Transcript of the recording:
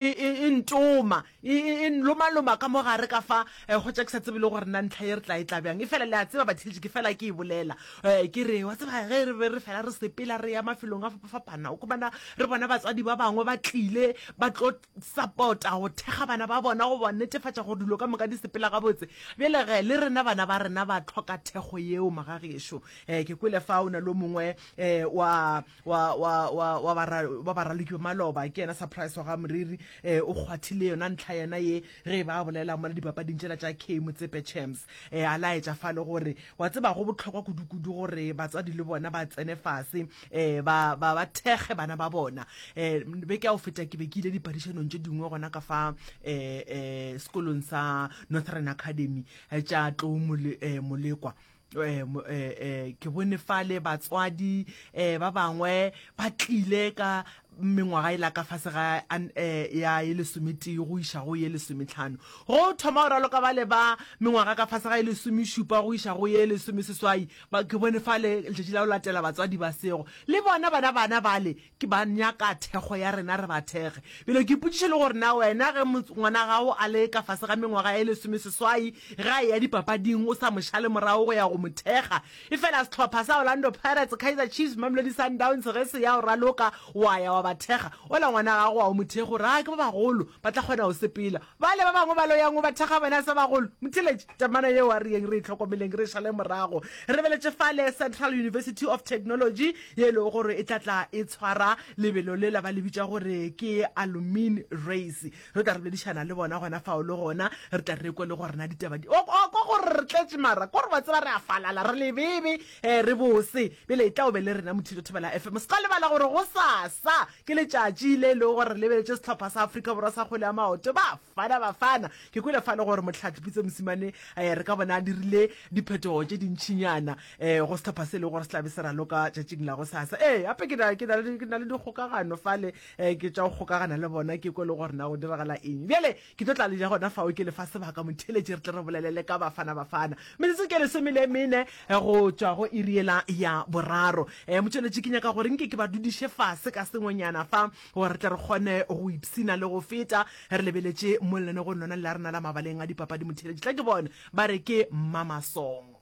e ntoma, e, e, e nlomaloma ka mo gare ka fa, eh, go tša ke sa tsebe le gore na ntlha ye re tla e tla bjang. Efela le a tseba, batheetši, ke fela ke e bolela, eh, ke re, wa tseba, ge re be re fela re sepela re ya mafelong a fapafapana, o khumana re bona batswadi ba bangwe ba tlile ba tlo sapota go thekga bana ba bona go ba netefatša gore dilo ka moka di sepela gabotse. Bjale ge le rena bana ba rena ba tlhoka thekgo yeo, magagešo. Eh, ke kwele fa o na le o mongwe, eh, wa, wa wa wa wa bara wa baralukwe maloba ke yena surprise wa ga moriri eh o kgwathile yona ntlha yena ye ge e ba bolela mo le dipapading tšela tša K motsepe champs eh a laetša fa le gore wa tseba go botlhokwa kudukudu gore batswadi le bona ba tsene fase eh ba ba ba thekge bana ba bona eh be ke a o feta ke be ke ile dipadišanong tše dingwe gona ka fa eh eh sekolong sa Northern Academy eh, tša tlou mole, eh, molekwa Eh, eh, eh, ke bone fale batswadi um ba bangwe ba tlile ka mengwaga e la ka fase ga ya e lesometee go iša go ye lesometlhano go thoma go raloka ba le ba mengwaga ka fase ga e lesomešupa go iša go ye lesomeseswai ke bone fale letšatši la go latela batswadi ba sego le bona bana bana bale Ke ba nyaka thekgo ya rena re ba thekge. Bjale ke ipotšiša le gore na wena ge ngwana gago a le ka fase ga mengwaga e lesomeseswai ge a eya dipapading o sa mo šale morago go ya go mo thekga efela sehlopha sa Orlando Pirates, Kaizer Chiefs, Mamelodi Sundowns ge se ya go raloka wa ya wa ba thekga ola ngwana gago a o mo thekge o re a ke ba bagolo ba tla kgona go sepela. Bale ba bangwe ba lo yang go bathakgabana sa bagolo. Motheletši, Temana yeo a re yeng re e hlokomeleng re e šale morago. Re lebeletše fale Central University of Technology, ye e lego gore e tla tla e tshwara lebelo lela ba le bitša gore ke Alumine Race. Re tla re boledišana le bona gona fao le gona re tla re kwe le gore na ditaba di o o kwa gore re tletše mara kore wa tseba re a falala re lebebe re bose bjale e tla o be le rena Mothito Thobela FM. Se ka lebala gore gosasa Ke letšatši le e lego gore re lebeletše sehlopha sa Afrika Borwa sa kgwele ya maoto, Bafana Bafana. Ke kwele fa le gore Mohlathi Pitso Mosimane re ka bona a dirile diphetogo tše dintšinyana go sehlopha se e lego gore se tla be se raloka tšatšing la gosasa. Ee, gape ke na le dikgokagano fale, ke tša go kgokagana le bona ke kwe le gore na go diragala eng. Bjale Ke tlo tla le ja gona fao ke le fa sebaka, motheeletši, re tle re bolelele ka Bafana-Bafana. Metsotso ke lesome le mene go tšwa go iri yela ya boraro. E, motšweletši, ke nyaka gore nke ke ba dudiše fase ka sengwenyana fa, gore re tle re kgone go ipshina le go feta re lebeletše mo lenaneogong lona le la rena la mabaleng a dipapadi, motheeletši. Tla ke bone ba re ke Mmamasong.